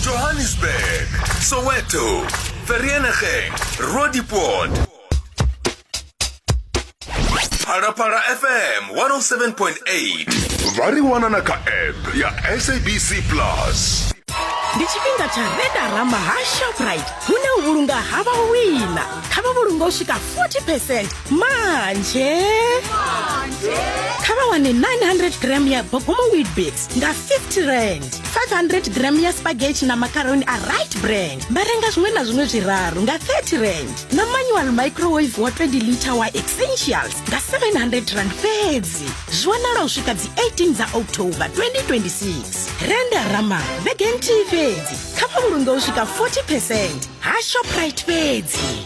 johannesburg soweto vereeniging roodepoort phalaphala fm 107.8 vha ri wana na kha app ya sabc plus ndi tshifhinga tsha redarama ha shoprite hune u vhulunga ha vhawina kha vha vhulunge u swika 40 percent manje kha vha wane 900 gram ya bogomo witbix nga 50 rand 500 gram ya spaghetti na macaroni a right brand vha renga zwiṅwe na zwiṅwe zwiraru nga 30 rand na manual microwave wa 20 liter wa essentials nga 700 rand fhedzi zwi wanala u swika dzi 18 dza october 2026 rende a rama vhege nthihi fhedzi kha vha vhulunge u swika 40 percent ha shoprite fhedzi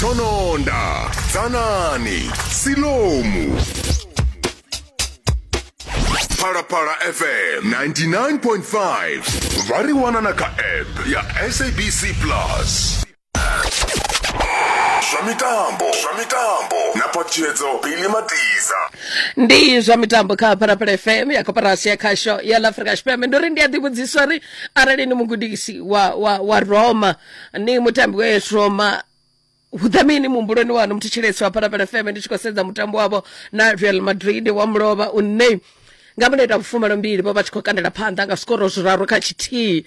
Tononda, Zanani, Silomu. Para Para FM 99.5. Variwana na ka app ya SABC Plus. Zwa mitambo, zwa mitambo. Na pachedzo Billy Matiza. ndi zwa mitambo kha pharaphala fm ya koporasi ya khasho ya la afrika tshipembe ndi uri ndi a ḓivhudzisa uri arali ni mugudisi wa, wa, wa roma ni mutambi wa yes roma hu ḓa mini muhumbuloni wanu muthetshelesi wa phalaphala fm ndi tshi khou sedza mutambo wavho na real madrid wa mulovha u nṋei nga mineta vhufumalo mbili vho vha tshi khou kandela phanḓa nga zwikororo zwiraru kha tshithihi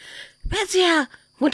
fhedziha